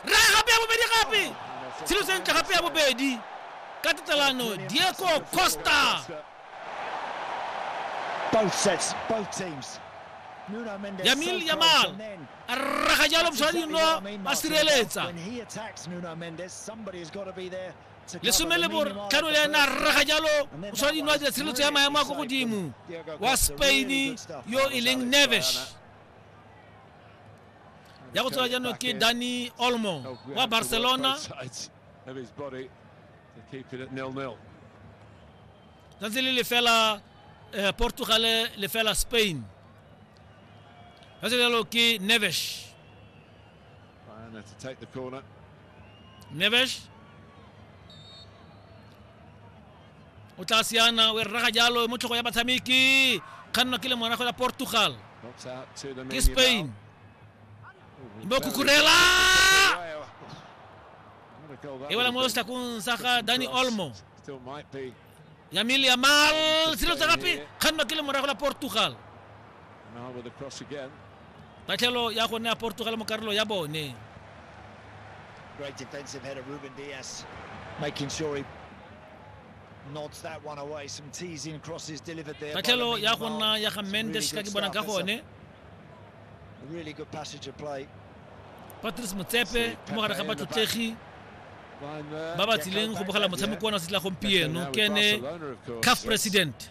ra gape ya bobedi gape tshelo sentle gape ya bobedi ka tatelano diego costa Both sets, both teams. Yamil Yamal a raga jalo moshwadino a sireletsa lesome le botlhano le ena a raga jalo moshwadino a dira tshireletso ya maemo a ko godimo wa spain yo e leng nevesh ya go tswela jaanong ke dani olmo wa barcelona tsatsi le lefela eh, portugal lefela spain ka se jalo ke nevesh nevesh o tla siana o e rraga jalo mo tlhogo ya batshameki kgannwa ke le morago ya portugal Knocks out to the ke spain bo khukhurela e wela mo setlakong sa ga dani olmo Still might be. yamil yamal selo tsa gape kgannwa ke le morago la portugal Now with the cross again. tatlhelo ya go nea portugal mo karolo ya bone Great defensive header, Ruben Diaz making sure he nods that one away. Some teasing crosses delivered there. by tatlhelo Lamine ya go Yamal. nna ya ga Some mendes ka really ke good bonang ka stuff. It's gone a Really good passage of play. patrice motsepe mo gare ga batlotlegi ba ba tsileng go bogela motshameko wa na se tla gompieno ke ene caf president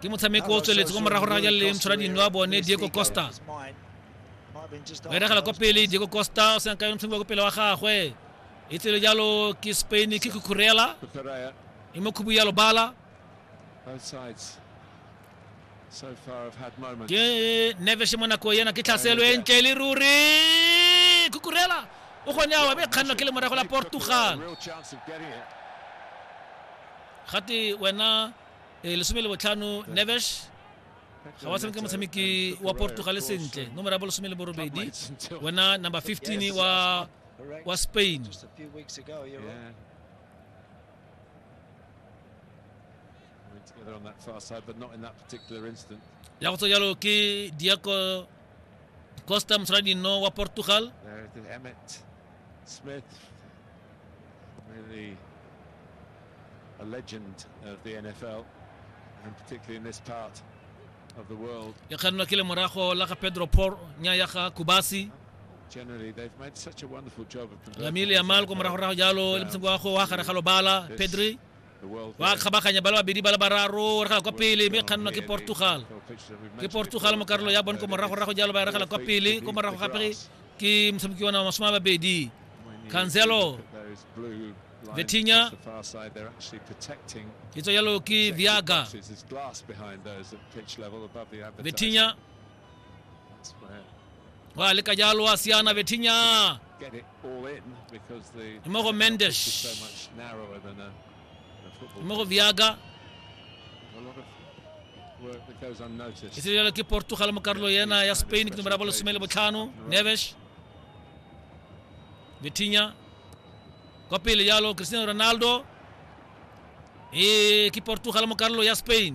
ke motshameko o tsweletse kwa morago raya le motshwara dino wa bone diego costa o eragela kwa pele diego costa o senka motshameko wa kwa pele wa gagwe e tsele jalo ke spain ke kukurela e mo khubu ya lobala ke neves mo nako ena ke tlhaselo e ntle le ruri kukurela o gone awa be kganno ke le morago la portugal gate wena e lesome le botlhano neves ga wa tshameka motshameki wa portugal sentle nomoro ya bo lesome le borobedi wena number 15 wa wa spain ya go tsa jalo ke diaco costa motswadi no wa portugal Smith, really a legend of the NFL, and particularly in this part of the world. ya ka nna ke le morago la ga pedro por nya ya ga kubasi Generally, they've made such a wonderful job of converting lamile ya these malko NFL moragorago jalo le players. motshameko wa go wa gare ga lobala pedri ba kgabaganya ba le babedi ba le bararo regela kwa pele mme kgannwa ke portugal ke portugal mo karolo ya bone ko moragorago jalo ba regela kwa pele ko morago gape ke motshameki ona masome a babedi cancelo vetinya e tswa jalo ke viaga vetinya ba leka jalo wa siana betinya mo go mendesh mo go viaga e se jalo ke portugal mo karolo yena ya spain ke nomero ya bolesome le botlhano nevesh betinya kwa pele jalo cristiano ronaldo e ke portugal mo karolo ya spain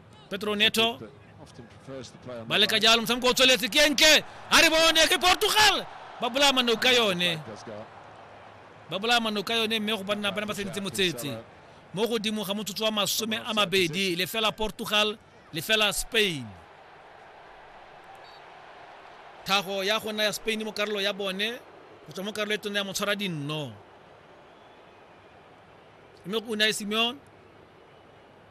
Pedro Neto ba leka jalo motshameko o tsweletse ke enke a re bone ke portugal ba bolaya manao ka yone ba bolaya manao ka yone mme go banna bana ba seditse motsetse mo godimo ga motsotso wa masome a mabedi lefela portugal lefela spain thago ya go nna ya spain mo karolo ya bone go tswa mo karolo e tona ya motshwara dinno mme o ne a e simeon